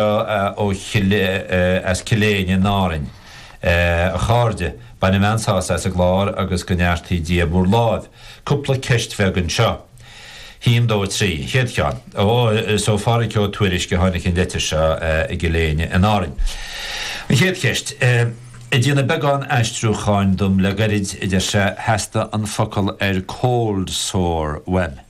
ó Chill, as Cill Éinne in Árainn. A chairde, bainim an-sásamh as an gclár agus go neartaí Dia bhur láimh. Cúpla ceist bheag anseo. Haon, dó, trí. An chéad cheann. Ó, is ó Phádraig Ó Tuairisg a tháinig an leitir seo i gCill Éinne in Árainn. An chéad cheist. Ag déanamh beagán aistriúcháin dom le gairid, a deir sé, theastaigh an focal ar cold sore uaim.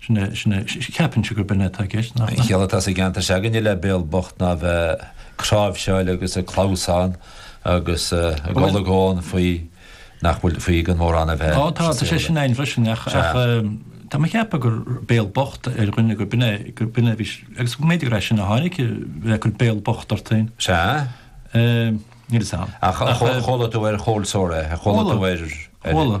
Sin é, sin é. Cheapfainnse gurb in é atá i gceist, nach. An chiall atá sa gceantar s'againne le béal bocht ná a bheith ag cnáimhseáil agus ag clamhsán agus ag olagón faoi nach bhfuil, faoi gan mórán a bheith. Ó tá, tá sé sin ann freisin ach, ach eh, tá mé a cheapadh gur béal bocht ar dhuine gurb in é, gurb in é a bhí, agus go mb'fhéidir gur é sin a tháinig, eh, bheith ag cur béal bocht ort féin. Sea? Eh, Níl fhios a'm. Ach, eh, chuala tú ar chold sore é, chuala tú ar, ar, Chuala.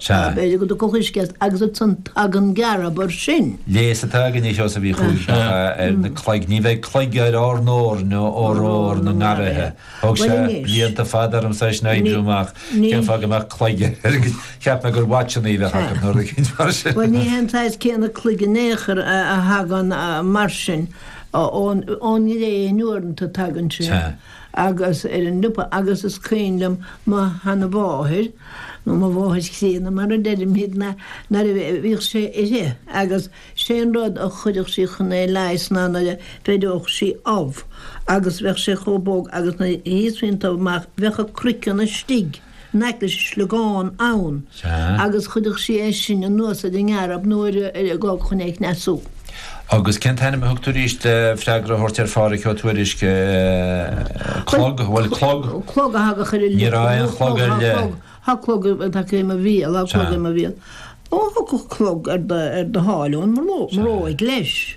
Sea. Tá Béarla go do gcomhchuisceacht agus ansan tagann gearb air sin. Léas atá againne Seosamh Uí Chúiseacha ar na cloig. Ní bheidh cloig ar ár ndorn ó rómhar na ngarraithe. Thóg sé blianta fada ormsa sin a oibriú amach cén fáth go mbeadh cloig ar. Cheap mé gur watchannaí a bheadh ann nó rud eicínt mar sin. Bhuel ní hé an saghas céanna cloig in aon chor a thagann mar sin ón ngréin uaireanta tagann sé. agus ar an liopa agus is cuimhin liom mo sheanamháthair nó mo mháthair chríonna mar a deirimidne nuair a bhíodh sé uirthi agus sé an rud a chuirfeadh sí chun é leigheas ná nuair a bheireodh sí ubh agus bheadh sé chomh bog agus nuair a íosfaí an t-ubh amach bheadh an craiceann istigh. n-aice leis an sliogán ann agus chuirfeadh sí é sin anuas ar an ngearb nó ar an ngág chun é a chneasú. Agus cén t-ainm a thug tú arís le freagra a thabhairt ar Phádhraic Ó Tuairisc? Clog? Bhuel, clog. Clog a thagadh ar an lios. Ní raibh aon chlog ar leith. Thá clog tagtha i mo bhéal, thá clog i mo bhéal. Ó, thiocfadh clog ar do sháil ón mbróig leis.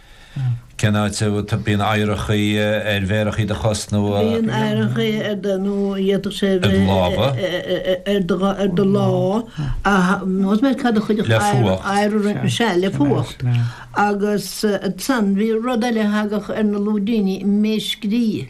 Cén áit a mbíonn oighreachaí ar mhéarachaí do chos nó. Bíonn oighreachaí ar do nó d'fhéadfadh sé a bheith ar do lámha. ar do lámha ach más mé cad a chuirfeadh oighreach roinnt na sea, le fuacht. Sea, le fuacht. Agus ansan bhí rud eile a thagadh ar na lúidíní, méirscrí.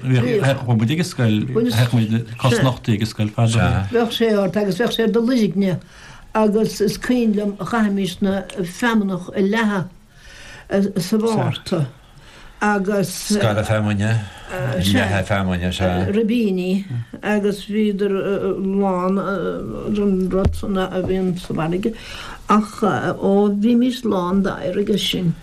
Bhíodh. Bhí muid ag an scoil, théadh muid cosnochtaithe ag an scoil fad ó shoin. Bheadh sé ort agus bheadh sé ar do luirgne agus is cuimhin liom chaithimis an fheamnach a leathadh sa Mhárta agus. Scaradh feamainne, leathadh feamainne, sea. Ribíní agus bhíodar lán den rud san a bhíonn sa bhfarraige ach ó bhímis lán d'oighear aige sin.